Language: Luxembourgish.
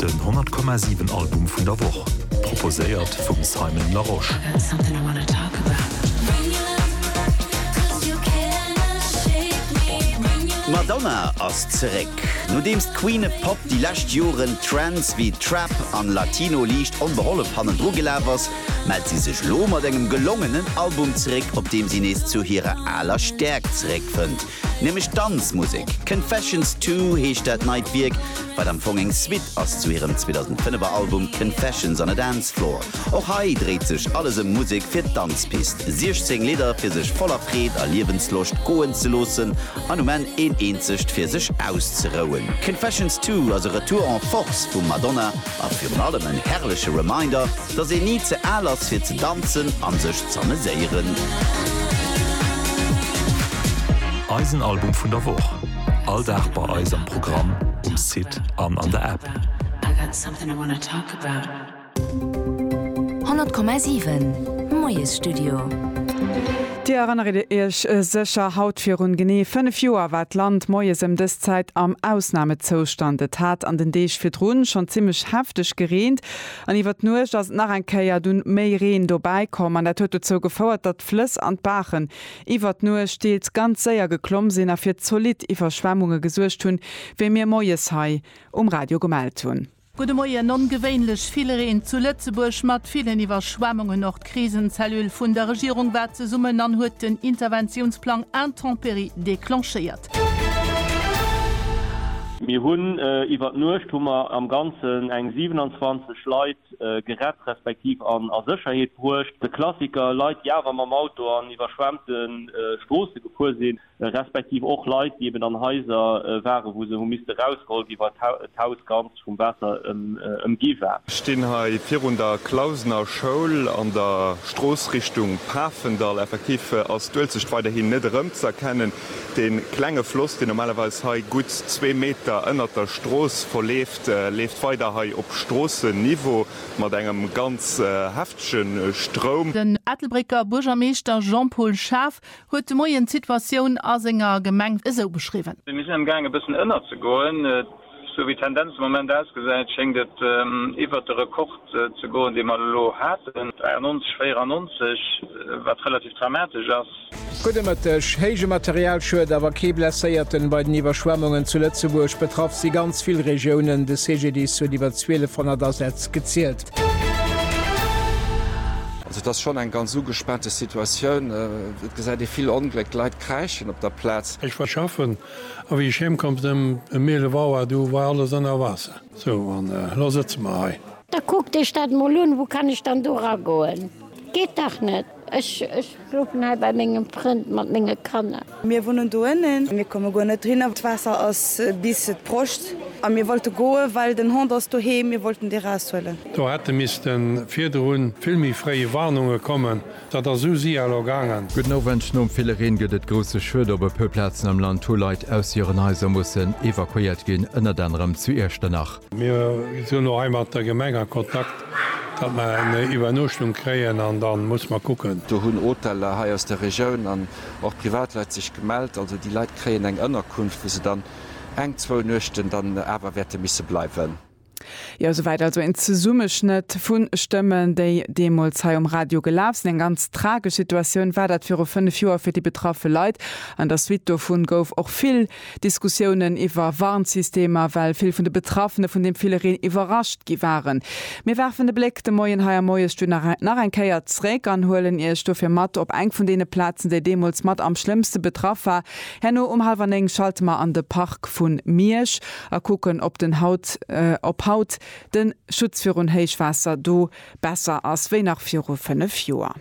Den 100,7 Album vun der Woch, proposéiert vum Simon Larosche. D'Madonna ass zeréck. Nodeems d'Queen e Pop déi lescht Joren Trends wéi Trap an Latino liicht onbehollef hannendru gelaf ass, mellt si sech lo mat engem gelongenen Album zeréck, op deem si nees zu hirer aler Stäerkt zeréckfënnt. Nämlech Danzmusek. Confessions Two heescht dat neit Wierk, wat am Fong eng Suite ass zu hirem 2005 er Album Confessions on a Dance Floor. Och hei dréit sech alles ëm Musek fir d'Danzpist, 16 Lidder fir sech voller Freed a Liewensloscht goen ze loossen an um Enn een eenzegt fir sech auszerouen. Confessions Two ass e Retour en Force vum Madonna. A virun allem en herrleche Reminder, dass een ni ze al ass fir ze danzen an sech z'ameséieren. Eisen Album vun der Woch, all Dag bei eis am Programm, um Site an an der App. 100,7 Moiesstudio. Dir erënnert Iech sécher, haut virun genee 5 Joer war d'Land moies ëm dës Zäit am Ausnamezoustand. Et hat an den Deeg virdrun schonn zimmlech hefteg gereent an iwwert d'Nuecht ass et nach eng Kéier du méi Reen dobäi komm an dat huet dozou gefouert, datt d'Flëss an d'Baachen iwwert d'Nuecht deels ganz séier geklomm sinn a fir zolidd Iwwerschwemmunge gesuergt hunn, wéi mir moies hei um Radio gemellt hunn. Gudde Moien. Ongewéinlech vill Reen zu Lëtzebuerg mat villen Iwwerschwemmungen. Och d'Krisencellule vun der Regierung war zesummen an huet den Interventiounsplang Intempéries déclenchéiert. Mir hunn iwwer d'Nuecht hu mer am Ganzen eng 27 Leit gerett respektiv an a Sécherheet bruecht. De Klassiker, Leit déi awer mam Auto an iwwerschwemmte Stroosse gefuer sinn. respektiv och Leit, déi eben an Haiser waren, wou se hu misste rausgeholl gi wa d'Haus ganz vum Waasser ëmgi war. Ech stinn hei virun der Clausener Schoul an der Strooss Richtung Pafendall. Effektiv ass d'Uelzecht weiderhin net erëmzëerkennen. De klenge Floss, deen normalerweis hei gutt zwee Meter ënnert der Strooss verleeft, leeft weider hei op Stroossenniveau mat engem ganz heftege Stroum. Den Ettelbrécker Buergermeeschter Jean-Paul Schaaf Huet de Moien d'Situatioun a senger Gemeng esou beschriwwen. Mir sinn am Gaang e bëssen ënnerzegoen. Esou wéi d'Tendenz de Moment ausgesäit, schéngt et iwwert de Rekord ze goen, dee mer elo haten, 93, 94, wat relativ dramatesch ass. Gudde Mëtteg. Héije Materialschued, awer kee Blesséierten bei den Iwwerschwemmungen zu Lëtzebuerg. Betraff si ganz vill Regiounen. De CGDIS huet iwwer 1200 Asätz gezielt. Stad. Also et ass schonn eng ganz ugespaante Situatioun. Et gesäit ee vill Ongléck, d'Leit kräischen op der Plaz. Ech war schaffen a wéi ech heem komm sinn, ëm um 11 Auer, du war alles ënner Waasser. Sou, an elo sëtze mer hei. Da kuckt Iech dat emol un, wou kann ech dann do eragoen? Geet dach net! Ech schlofen hei bei mengem Frënd mat menge Kanner. Mir wunnen do ënnen. Mir komme guer net erinner. D'Waasser ass bis d'Broscht. A mir wollte goen, well den Hond ass doheem. Mir wollten dee raushuelen. Do hätte misste virdrun vill méi fréi Warnunge kommen. Dat ass esou si elo gaangen. Gudden Owend, Nom ville Reen gëtt et grousse Schued op e puer Plazen am Land, hu Leit aus hiren Haiser mussen evakuéiert ginn, ënnert anerem zu Iechternach. Mir sinn och hei mat der Gemeng a Kontakt, datt mer eng Iwwernuechtung kréien an da muss mer kucken. Do hunn Hoteller hei aus der Regioun an och Privatleit sech gemellt. Also déi Leit kréien eng Ënnerkunft, wou se dann eng, zwou Nuechten dann awer wäerte misse bleiwen. Jo, souwäit also een Zesummeschnëtt vu Stëmmen, déi deemools hei um Radio gelaf sinn. Eng ganz tragesch Situatioun war dat viru fënnef Joer fir déi betraffe Leit. An der Suite dovu gouf och vill. Diskussiounen iwwer Warnsystemer, well vill vun de Betraffene vun deem ville Reen iwwerrascht gi waren. Mir werfen de Bléck de Moien hei am Moiesstudio nach eng Kéier zréck an huelen Iech dofir mat op eng vun deene Plazen, déi deemools mat am schlëmmste betraff war. Herno um hallwer néng schalte mer an de Park vu Miersch a kucken, ob den haut, ob haut de Schutz virun Héichwaasser do besser ass wéi nach viru fënnef Joer.